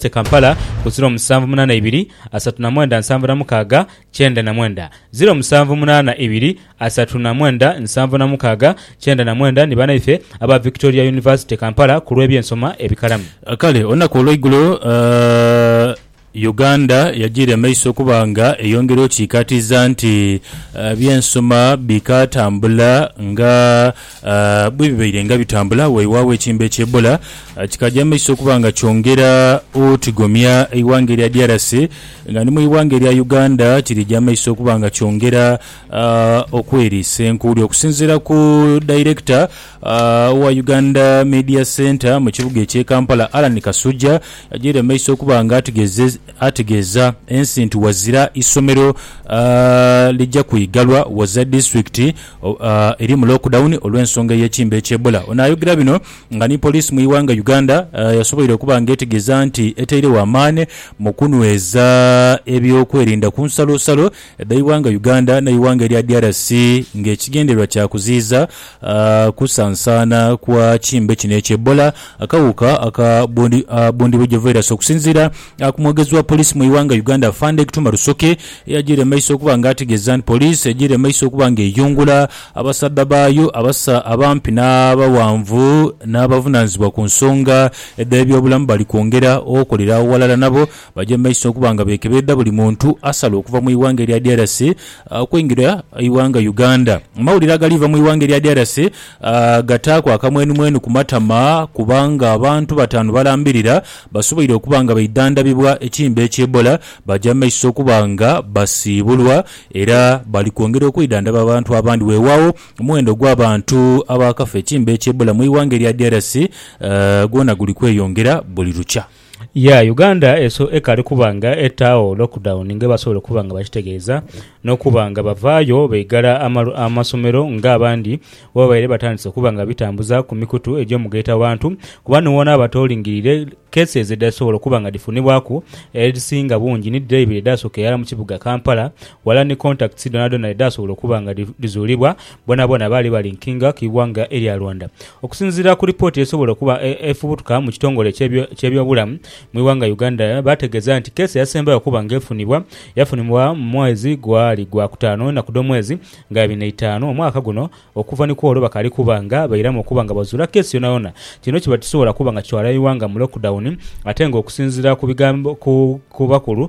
Te Kampala ku ziro musanvu munana ibiri asatu na mwenda nsanvu na mukaaga kyenda na mwenda ziro musanvu munana ibiri asatu na mwenda nsanvu na mukaaga kyenda na mwenda ni banaife aba Victoria University Kampala ku lw'ebyensoma ebikalamu. Kale olunaku olweigulo Uganda yajiire maiso okuba nga eyongera okikaatiiza nti ebyensoma bikatambula nga Bwe bibaire nga bitambula, waiwaagho ekiimba ekya Ebola kikaaja mu maiso okuba nga kyongera otigomya eighanga erya DRC nga ni mu ighanga erya Uganda kirija mu maiso okuba nga kyongera okweriisa enkuuli. Okusinziira ku dayirekita owa Uganda Media Centre mu kibuga eky'e Kampala, Allan Kasujja yajaire mu maiso okuba nga ategeeza ensi nti wazira isomero lija kwigalwa, waza disitulikiti eri mu lockdown olw'ensonga ey'ekimbe ekya Ebola. Ono ayogera bino nga ni poliisi mu ighanga Uganda yasoboire okuba nga etegeeza nti eteiregho amaani mu kunweza eby'okwerinda ku nsalosalo dha ighanga Uganda n'eighanga erya DRC nga ekigendererwa kya kuziiza kusansaana kwa kimbe kino ekya Ebola akawuka aka bundibugyo virus okusinziira Aku omwogezi wa police mu ighanga Uganda Afande Gituma Rusoke eyajiire mumaiso okuba nga ategeeza nti police ejiire mumaiso okuba nga eyungula abasaadha baayo abasa abampi n'abawanvu n'abavunanizibwa ku nsonga edh'ebyobulamu bali kwongera okolera agho ghalala nabo baje mumaiso okuba nga bekebeedha buli muntu asala okuva mu ighanga erya DRC okweingira ighanga Uganda. Amawulire agaliiva mu ighanga erya DRC Gataaku akamwenumwenu ku matama kubanga abantu bataanu balambirira basoboire okuba nga baidhandhabibwa ekiimba ekya Ebola baja mu maiso okuba nga basiibulwa era bali kwongera okwidhandhaba abantu abandi. Weewaawo omuwendo ogw'abantu abaakafa ekiimba ekya Ebola mu ighanga erya DRC gwona guli kweyongera buli lukya. Ya, Uganda ekaali kuba nga etaagho lockdown nga ebasobola okuba nga bakitegeeza, n'okuba nga bavaayo baigala amasomero nga abandi bwe babaire batandise okuba nga babitambuza ku mikutu egy'omugaito abantu. Kuba ni wona waba tolingirire, cases edhasobola okuba nga dhifunibwaku edhisinga bungi ni dhire ibiri edhaasoka irala mu kibuga Kampala, wala ni contacts dhonadhona edhaasobola okuba nga dhizuulibwa, bonabona baali ba linkinga ku ighanga erya Rwanda. Okusinziira ku lipooti esobola okuba efubutuka mu kitongole eky'ebyobulamu mu ighanga Uganda baategeeza nti keesi eyasembayo okuba nga efunibwa, yafunibwa mu mwezi gwali gwa kutaanu enaku dh'omwezi nga ibiri na itaanu omwaka guno okuva ni kwolwo bakaali kuba nga bairamu okuba nga bazuula keesi yonayona. Kino kiba tikisobola kuba nga kitwala ighanga mu lockdown ate nga okusinziira ku bakulu,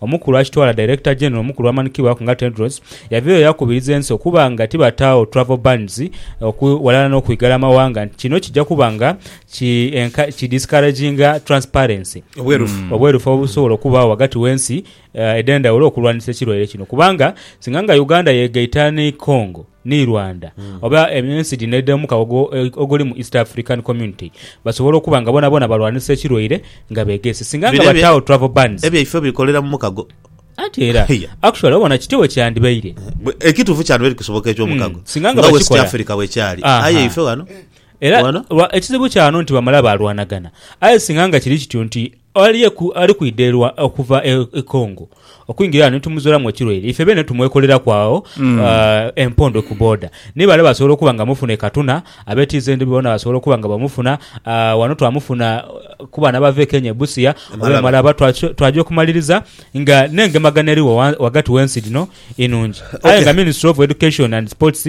Omukulu akitwala Director General omukulu amanhikibwaku nga Tedros yavireyo yakubiriza ensi okuba nga tibataagho travel bans oku ghalala n'okwigala amawanga nti kino kija kuba nga ki enca ki discouraginga transparency, Obwerufu. mm, obwerufu obusobola okubaagho ghagati w'ensi edh'endhaghulo okulwanisa ekirwaire kino kubanga singa nga Uganda yeegaita ni Congo, ni Rwanda oba ensi dhino edh'omu kawago oguli mu East African Community basobole okuba nga boonaboona balwanisa ekirwaire nga beegeese. Singa nga Bino ebye- bataawo travel bans Ebyaife bikolera mu mukago. anti era Iya. actually obona kityo bwe kyandibaire. Bwe- Ekituufu kyandibaire kisoboka eky'omukago. Mm, singa nga Nga West bakikola. Africa bwekyali. Aha. Aye ife wano. Era Wano? lwa- ekizibu kyano nti bamala balwanagana. Aye singa nga kiri kityo nti Ali eku ali kwidha erwa okuva e Congo okwingira ghano ni tumuzuulamu ekirwaire. Ife beene tumwekoleraku agho empondo ku boda. Ni bale basobola okuba nga bamufuna e Katuna, ab'e TZ boona basobola okuba nga bamufuna. Ghano twamufuna ku baana abava e Kenya e Busia oba e Malaba. Twaja okumaliriza nga n'engemagana erigho ghagati gh'ensi dhino inungi. Aye nga Ministry of Education and Sports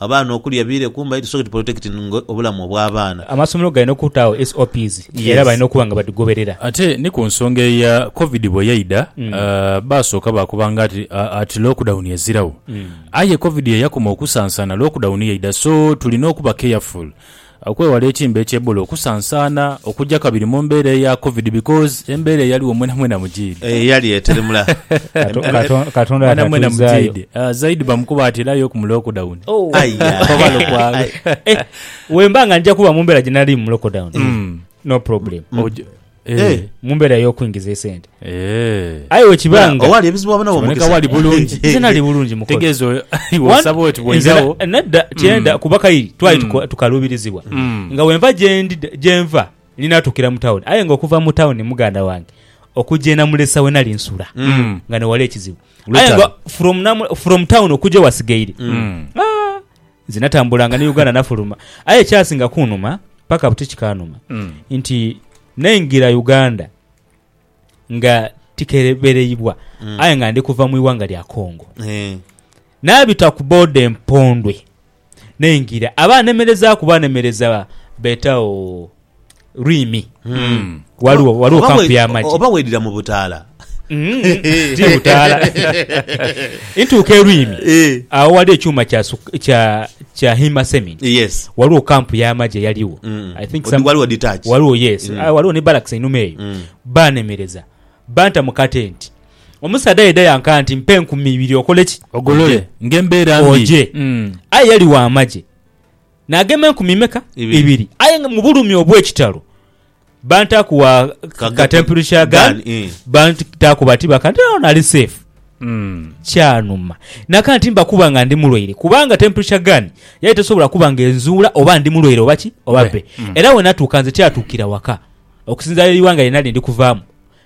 Abaana okulya biire kumbali tusoke tu protectinge obulamu obw'abaana. Amasomero galina okutaagho SOPs era balina okuba nga badhigoberera. Ate ni ku nsonga eya Covid bwe yaidha, baasooka baakoba nga ati lockdown eziragho. Aye Covid ye yakoma okusansaana, lockdown yaidha. So tulina okuba careful. Okwewala etimba ekye Ebola okusansaana okugya kabiri mu mbeera eya covid because embeera eyaligho mwena mwena mujiidhi. Eyo yali eteremula mwena mwena mujiidhi zaidi bamukuba ati era yoku mu lockdown oba lukwaagha. Wemba nga nja kuba mu mbeera gye nalimu mu lockdown no problem. Eh. eh, mu mbeera y'okwingiza esente Eh. aye wekiba nga owaali ebizibu waba nawo kiboneka wali bulungi nze nali bulungi mukozi tegeeza oyo iwe osaba oti bwoirawo Nze na- nadda kyenda kuba kairi twali tuko- tukaluubirizibwa Mm. nga wenva gyendi gyenva ninatuukira mu tawuni aye nga okuva mu tawuni muganda wange okugya enamulesa we nali nsula Mm. nga newali ekizibu aye Lutalo. nga from, namu- from town okugya wasigaire Mm. Ah, Nze natambulanga ni Uganda nafuluma aye ekyasinga kunuma paka buti kikanuma nti naingira Uganda nga tikebereibwa aye nga ndi kuva mu ighanga lya Congo Eh. nabita ku boda empondwe naingira abanemerezaku banemereza betawo lwimi mm. waliwo waliwo kampu yamagi oba wedira mu butaala mm. ti butaala ntuuka elwimi eh. awo wali ekyuma kya kya kya hima semi yes waliwo kampu yamagi eyaliwo mm. i think some waliwo detach waliwo yes mm. Ah, waliwo ne barracks enuma eyo mm. banemereza banta mu katenti omusaadha yeda yankaa nti mpa enkumi ibiri okoleki ogolole ngembeera mbi oje mm. aye yali wa amagye Naagema enkumi imeka? Ibiri. Ibiri. Aye nga mu bulumi obw'ekitalo bantaaku wa Ka- ka temperature gun, gun, eh. bantaaku bati baka nti awo nali safe. Mm. Kyanuma. Naka nti mbakuba nga ndi mulwaire kubanga temperature gun yali tesobola kuba nga enzuula oba ndi mulwaire oba ki oba bbe. Era we natuuka nze kyatuukira waka okusinziira eighanga lye nali ndi kuvaamu.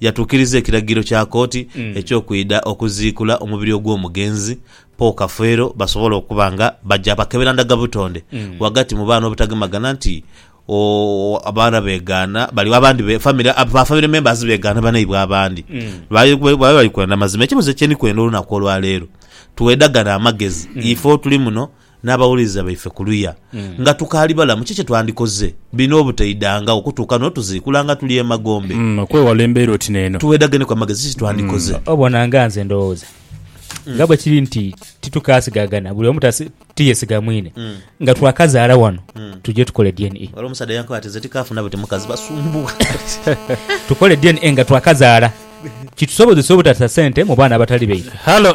Yatuukiriza ekiragiro kya kooti eky'okwidha okuziikula omubiri ogw'omugenzi Paul Kafeero basobole okuba nga baja bakebera ndagabutonde ghagati mu baana obutagemagana nti o, abaana beegaana bali abandi be, famire, ba famire members beegaana banaibwe abandi. Baali baali bali kwenda mazima. Ekibuuzo kye ndi kwenda olunaku olwaleero, twedhagane amagezi, ife otuli muno, N'abawuliriza baife kuluya nga tukaali balamu, ki kye twandikoze bino obutaidangawo kutuuka n'otuziikula nga tuli emagombe? Okwewala embeera oti n'eno. Tuwedageneku amagezi, ki kye twandikoze? Obona nga nze ndowooza nga bwe kiri nti titukaasigagana, buli omu ti yeesiga mwine, nga twakazaala wano tuje tukole DNA. Waliwo omusaadha eyankoba ati, Nze tikaafu nabo ti mukazi, basumbuwa. Tukole DNA nga twakazaala kitusobozese obutasa sente mu baana abatali baife. Hallo!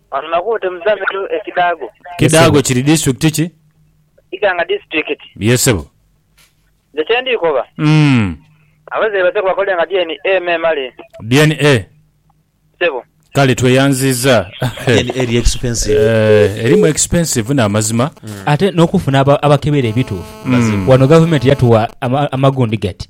Kidaago kiri disitulikiti ki? Ye sebo. DNA? Kale tweyanziiza. Eeh erimu expensive namazima. Ate nokufuna abakebera ebituufu. Wano gavumenti yatuwa amagundi gati.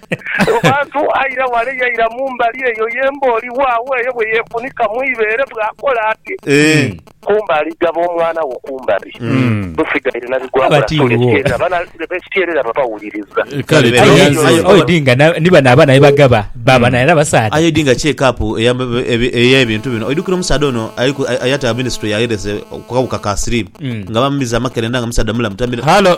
Mu bantu aira ghale yaira mu mbali eyo yemba oli waagho eyo bwe yeefunika mu ibeere bw'akola ati. Kumbali, gaba omwana wo kumbali. Nsigaire na bigwagula sula ekityerera bana b'ekityerera baba wuliriza. Kale Aye Aye Aye aye oidhi nga na- ni bano abaana bye bagaba baaba naira basaadha. Aye oidhi nga check up eya- ebi- ey'ebintu bino oidhukira omusaadha ono ali ku- ayataba ministry yaghereza ku kawuka ka siriimu nga bamumiza amakerenda nga omusaadha mulamu tamira Halo.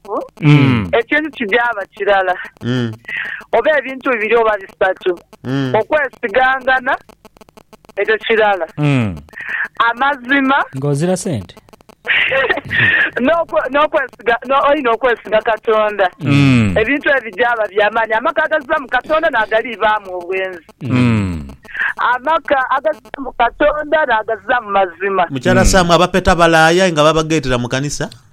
Abo ekintu kijaaba kirala oba ebintu bibiri oba bisatu, okwesigangana ekyo kirala, amazima, Ng'ozira sente. n'okwe- n'okwesiga no- oina okwesiga Katonda, ebintu ebyo bijaaba bya maani. Amaka agaziba mu Katonda n'agaliibaamu obwenzi, amaka agaziba mu Katonda n'agaziba mu mazima. Mukyala Sam, abapeta balaaya aye nga babageetera mu kanisa?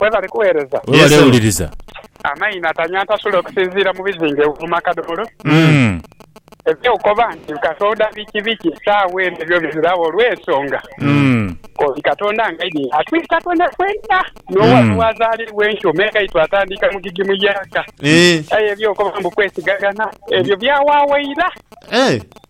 Webale kuwereza. Webale wuliriza. Amayi natanya atasula okusinziira mu bizinga ewo mu makadhomolo. Eby'okukoba nti Katonda biki biki saagho eno ebyo biziragho olw'ensonga k'oli Katonda ng'aidhi atwire Katonda fwenka n'owa n'owazaalirwa enkyo me nga itwatandika mu gigimu y'aka. Aye eby'okukoba mbu kwesigaghana ebyo byawaagho ira.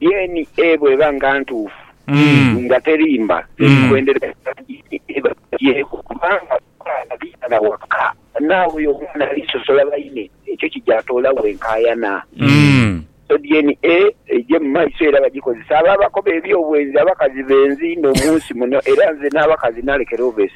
DNA bw'eba nga ntuufu nga terimba, ebikwendera bya DNA biba bigyeeku kubanga abaana biitana waka. Naawe oyo omwana alisosola baine, ekyo kija toolawo enkaayana. So DNA eije mu maiso era bagikozese abo abakoba eby'obwenzi, abakazi benzi inho mu nsi muno era nze n'abakazi nalekera oba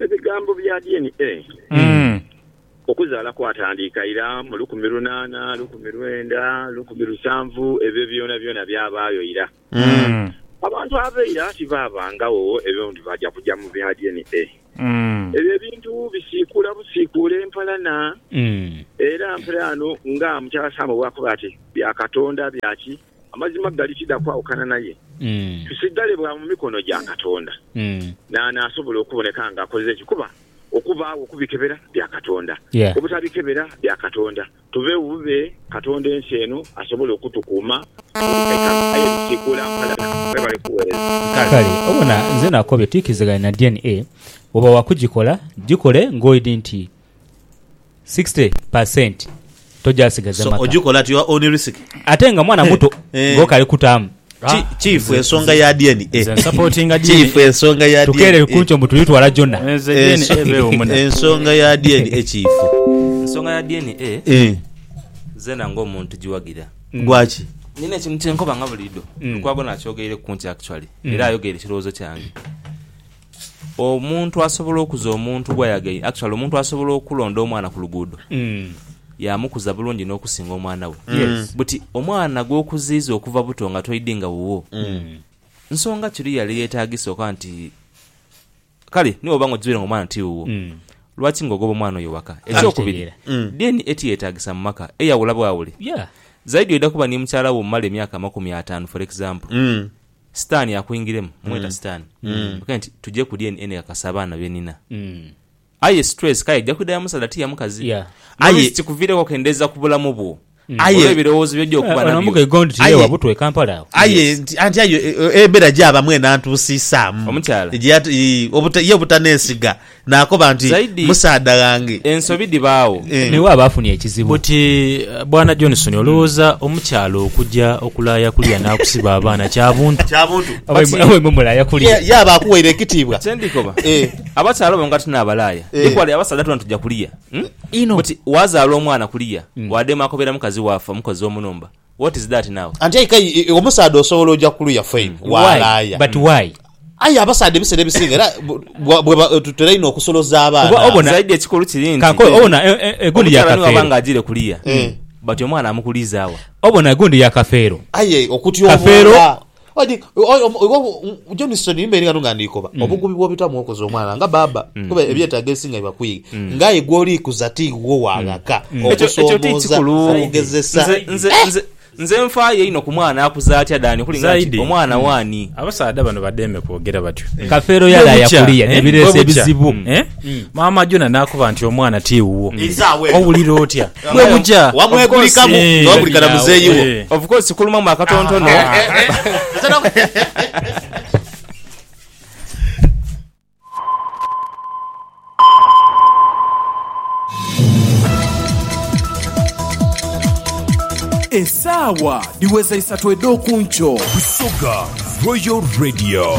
Ebigambo bya DNA okuzaala kwatandiika ira mu lukumi lunaana, lukumi lwenda, lukumi lusanvu, ebyo byonabyona byabaayo ira. Abantu ab'eira tibaabangagho ebyo nti baja kuja mu bya DNA. Ebyo ebintu bisiikuula busiikuula empalana, era mperaano nga Mutaasaamwe bw'akoba ati, Bya Katonda bya ki? Amazima gali kidha kwawukana naye tusigale bwa mu mikono gya Katonda. Naani asobola okuboneka nga akoze ki? Kuba okubaagho okubikebera bya Katonda, obutabikebera bya Katonda. Tuveegho bube Katonda ensi eno asobole okutukuuma mu bikaikalu. Aye bisiikuula mpalana. Mwebale kuweereza. Kale obona nze nakobye tuikirizagane na DNA. Bwoba wakugikola, gikole ng'oidhi nti 60 per cent tojasigaza so maka oja okola at your own risk ate nga mwana muto Eh. nga okali kutaamu Ki- kyifu ensonga ya DNA Nze nsupportinga DNA. kyifu ensonga ya tukerere DNA kunkyo mbu tulitwala gyona Nze DNA Enso- ebeewo muna. ensonga ya DNA kyifu ensonga ya dna Eh, zena nga omuntu giwagira gwaki nina ekintu kyenkoba nga buliido Mm. lukwago nakyogeireku kunkyo actually Mm. era ayogeire ekirowoozo kyange Omuntu asobola okuza omuntu gwayagaire actually omuntu asobola okulonda omwana ku luguudo yamukuza bulungi n'okusinga omwana we but omwana gwokuziiza okuva buto nga toidi nga wuwo nsonga ki luyali eyetaagisa okoba nti kale ni bwoba nga okizuire nga omwana ti wuwo lwaki nga ogoba omwana oyo waka. Ekyokubiri DNA tiyetaagisa mu maka eyawula bwawule zaidi oida kuba ni mukyala wo omumala emyaka amakumi ataanu for example. Sitaani akwingiremu, mmweta Sitaani, okughe nti tuje ku DNA nekakasa abaana be nina. Aye stress kale eja kwidha ya musaadha ti ya mukazi. Aye kikuviireku okendeeza ku bulamu bwo olw'ebirowoozo by'oja okuba nabyo. Aye anti aye embeera gy'abamu enantuusiisaamu obuta, ye obutaneesiga Naakoba nti, Zaidi, Musaadha ghange. ensobi dhibaagho. Eh. N'iwe aba afunye ekizibu. Oti, Bwana Johnson, olowooza omukyala okuja okulaaya kuliya n'akusiba abaana kya buntu? Kya buntu. Oba But, imwe oba imwe mulaaya ye, kuliya. ye aba akuwaire ekitiibwa. Kye ndi koba, Eh. abakyala abo nga tinaabalaaya, Eh. equally abasaadha twena tuja kuliya. Hmm? Inho. Oti, waazaala omwana kuliya, waadema akobera mukazi wo afa, mukozi wo mu nhumba. What is that now? Anti aye kale i- i- omusaadha osobola oja kuluya fine Why? walaaya But why? aye abasaadha ebiseera ebisinga era bu- bwa- bweba tutera inho okusoloza Oba abaana obona- Zaidi ekikulu kiri nti Kanko obona e- e- egundi ya omukyala niwaba nga kafeero. ajire kuliya but omwana amukuliiza wa? Obona egundi ya kafeero. aye Kafeero okutyoboola Odi Johnson imbeere ghano nga ndiikoba mm. obugubi bw'obitamu okoze omwana nga baaba mm. kuba mm. ebyetaago ebisinga biba kwiga nga aye gw'oliikuza ti wo waghaka okusoomooza okugezesa nze nfaayo ino ku mwana akuza atya dani kulinga nti omwana hmm. waani abasaadha bano bademe kwogera batyo kafeero yalaaya kuliya nebireesa ebizibu hmm. eh? Maama Jona n'akoba nti, Omwana ti wuwo. Owulira otya bwe buja? Wamwegulikamu nga wegulika na muzeeyi wo. Of course kulumamu akatontono. Esaawa dhiweza isatu edh'oku nkyo. Busoga Royal Radio.